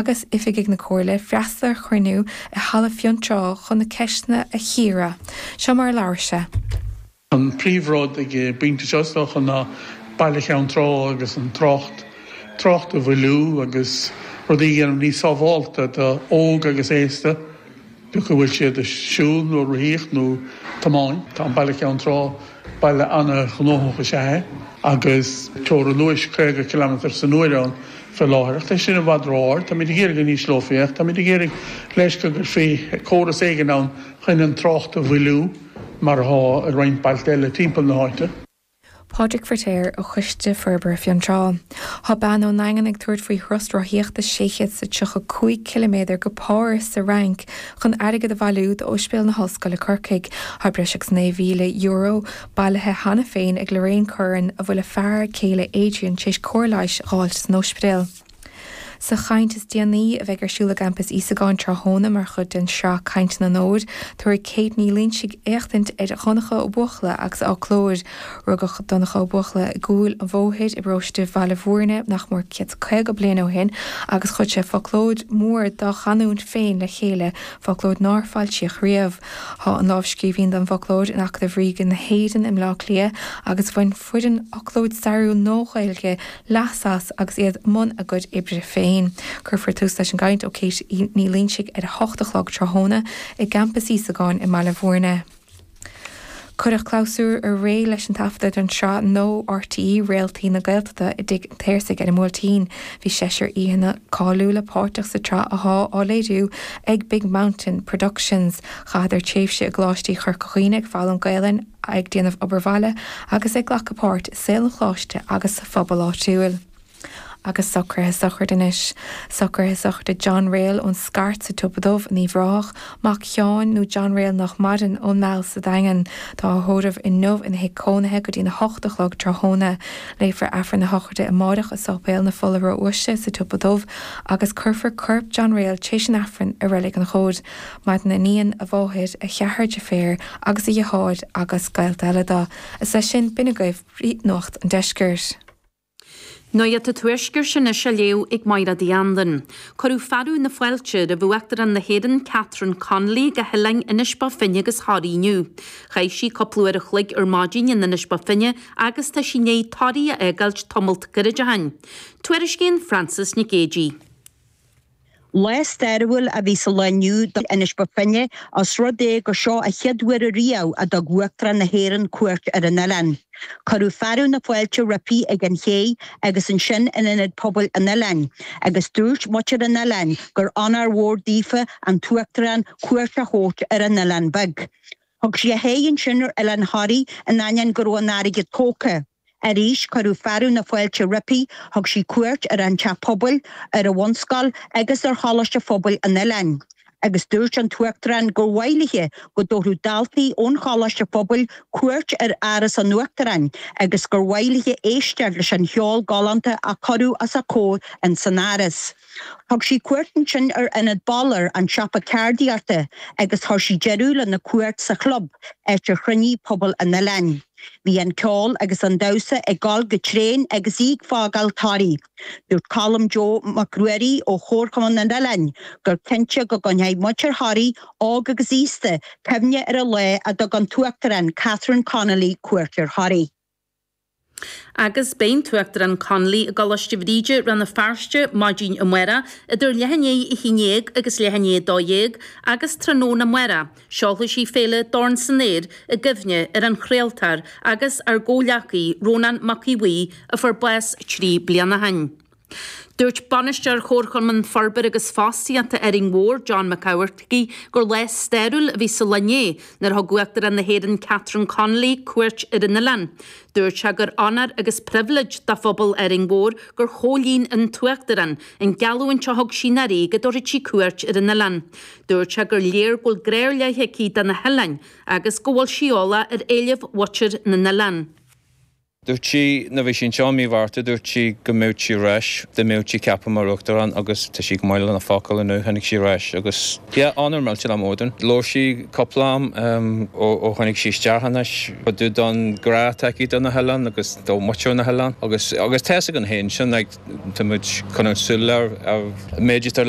agus oifigigh na Comhairle freastal ar chruinniú i Halla Fionntrá chun na ceisteanna a chíoradh. Seo mar a labhair sé. An príomh rud ag an bpointe seo, is dócha, ná Baile Cheann Trá agus an trácht, trácht a mhoilliú agus rudaí a dhéanamh níos sábhálta do óg agus aosta. Bíodh go bhfuil siad ag siúl nó ag rothaíocht nó tiomáint, tá an Baile Cheann Trá, baile an-ghnóthach is ea é, agus teora luais 50 cileamatair san uair ann fé láthair. Ach tá sin i bhfad ró-ard. Táimíd ag iarraidh go n-ísleofaí é, ach táimíd ag iarraidh leis go gcuirfí córas éigin ann chun an trácht a mhoilliú, mar atá i roinnt bailte eile timpeall na háite. Pádraig Firtéar ó Choiste Forbartha Fionntrá. Thá bean ón nDaingean ag tabhairt faoi thuras rothaíochta 600 is a tríocha cúig ciliméadar go Páras sa Fhrainc chun airgead a bhailiú d'Óispidéal na hOllscoile Corcaigh. Thá breis agus €9,000 bailithe cheana féin ag Lorraine Curran a bhfuil a fear céile Adrian tar éis cóir leighis a dh'fháilt san óispidéal. Sa chaint is déanaí, a bheidh ar siúl i gCampas Íosagáin tráthnóna mar chuid den sraith Cainteanna an Fhómhair, tabharfaidh Kate Ní Loingsigh éachtaint ar Dhonncha Ó Buachalla agus a fhoclóir. Rugadh Donncha Ó Buachalla i gCúil an Bhóthair i bparóiste Bhaile Bhúirne nach mór céad caoga bliain ó shin agus chuir sé foclóir mór dá chanúint féin le chéile, foclóir nár foilsíodh riamh. Tá an lámhscríbhinn don bhfoclóir in Acadamh Ríoga na hÉireann i mBleá Cliath agus bhain. foireann Fhoclóir Stairiúil na Nua-Ghaeilge leas as agus iad i mbun a gcuid oibre féin. Cuirfear tús leis an gcaint ó Kate Ní Loingsigh ar a hocht a chlog tráthnóna i gCampas Íosagáin i mBaile Mhúirne. Cuireadh clabhsúr aréir leis an taifeadadh don sraith nua RTÉ Réaltaí na Gaeltachta i dTigh an tSaorsaigh ar an mBuailtín. Bhí seisear aíonna cáiliúla páirteach sa tsraith athá á léiriú ag Big Mountain Productions. Chaitheadar tréimhse i gColáistí Chorca Dhuibhne ag foghlaim Gaelainn, ag déanamh obair bhaile agus ag glacadh páirt i saol an Choláiste agus sa phobal áitiúil. Agus socruithe sochraide anois. Socruithe sochraide John Rayel ón Scairt sa tSiopa Dubh in Uíbh Ráthach, mac Sheáin, nó John Rayel nách maireann, ón Meal sa Daingean. Tá a thórramh inniu ina thigh cónaithe go dtí'n a hocht a chlog tráthnóna. Léifear Aifreann a shochraide amáireach i Sáipéal na Fola Ró-Uaisle sa tSiopa Dubh agus cuirfear corp John Rayel t'réis an Aifrinn i Reilig an Chomhaid. Maireann a iníon, a mháthair, a cheathrar deirféar agus a dheartháir agus gaolta eile do, is leis sin, b'in agaibh nuacht an deiscirt. Nuacht an tuaiscirt anois á léamh ag Máiréad Uí Anluain. Cuireadh fearadh na fáilte roimh Uachtarán na hÉireann Catherine Connolly go hoileáin Inis Bó Finne agus Thoraí inniu. Chaith sí cúpla uair an chloig ar maidin in Inis Bó Finne agus tá sí i ndiaidh Toraí a fhágáilt tamallt gairid ó shin. Tuairiscíonn Frances Nic Géadaigh. Lá stairiúil a bhí sa lá inniu do Inis Bo Finne os rud é gur seo a chéad uair ariamh a dtug Uachtarán na hÉireann cuairt ar an oileán. Cuireadh fearadh na fáilte roipi ag an chéidh agus ansin in Ionad Pobail an oileáin agus dúirt muintir an oileáin gur onóir mhór daofa an tUachtarán cuairt a thabhairt ar an oileán beag. Thug sí a haghaidh ansin ar Oileán Thoraí in ainneoin go raibh an fharraige tógtha. Arís cuireadh fearadh na fáilte roipi, thug sí cuairt ar an Teach Pobail, ar an Bhunscoil agus ar Choláiste Phobail an Oileáin, agus dúirt an tUachtarán gur mhaith léi go dtabharfadh daltaí ón Choláiste Phobail cuairt ar Áras an Uachtaráin agus gur mhaith léi éisteacht leis an cheol galánta a cuireadh os a comhair ins an Áras. Thug sí cuairt ansin ar Ionad Balor, an siopa ceardaíochta, agus chuir sí deireadh lena cuairt sa chlub, áit ar chruinnigh pobal an oileáin. Bhí an ceol agus an damhsa ag dul go tréan agus í ag fágáil Thoraí. Dúirt Colm Joe Mac Ruairí ó Chomharchumann an Oileáin gur cinnte go gcoinneoidh muintir Thoraí, óg agus aosta, cuimhne ar an lá a dtug an tUachtarán Catherine Connolly cuairt ar Thoraigh. Agus beidh an tUachtarán Connolly i gColáiste Bhríde, Rann na Feirste, maidin amáireach, idir leath i ndiaidh a haon dhéag agus leath i ndiaidh a dó dhéag, agus tráthnóna amáireach, seolfaidh sí féile Dorn San Aer i gcuimhne ar an chraoltóir agus ár gcomhghleacaí, Rónán Mac Aodh Bhuí, a fuair bás trí bliana ó shin. Dúirt Bainisteoir Chomharchumann Forbartha agus Fostaíochta Árainn Mhór, John Mac Eachmharcaigh, gur lá stairiúil a bhí sa lá inné nuair a thug Uachtarán na hÉireann Catherine Connolly cuairt ar an oileán. Dúirt sé gur onóir agus pribhléid do phobal Árainn Mhór gur chomhlíon an tUachtarán an gheallúint a thug sí anuraidh go dtabharfadh sí cuairt ar an oileán. Dúirt sé gur léir go bhfuil grá ar leith aici do na hoileáin agus go bhfuil sí eolach ar éilimh mhuintir na n-oileán. Dúirt sí, nuair bhí sí anseo i mí Mhárta, dúirt sí go mbeadh sí ar ais, dá mbeadh sí ceaptha mar Uachtarán agus tá sí go maith lena focal inniu, tháinig sí ar ais agus yeah, onóir millteanach mór dúinn. Labhair sí cúpla am ó tháinig sí isteach anois, cad é an grá atá aici do na hoileáin agus do mhuintir na hoileáin agus agus tá fhios againn féin sin, like tá muid coinneáil súil ar an méid atá le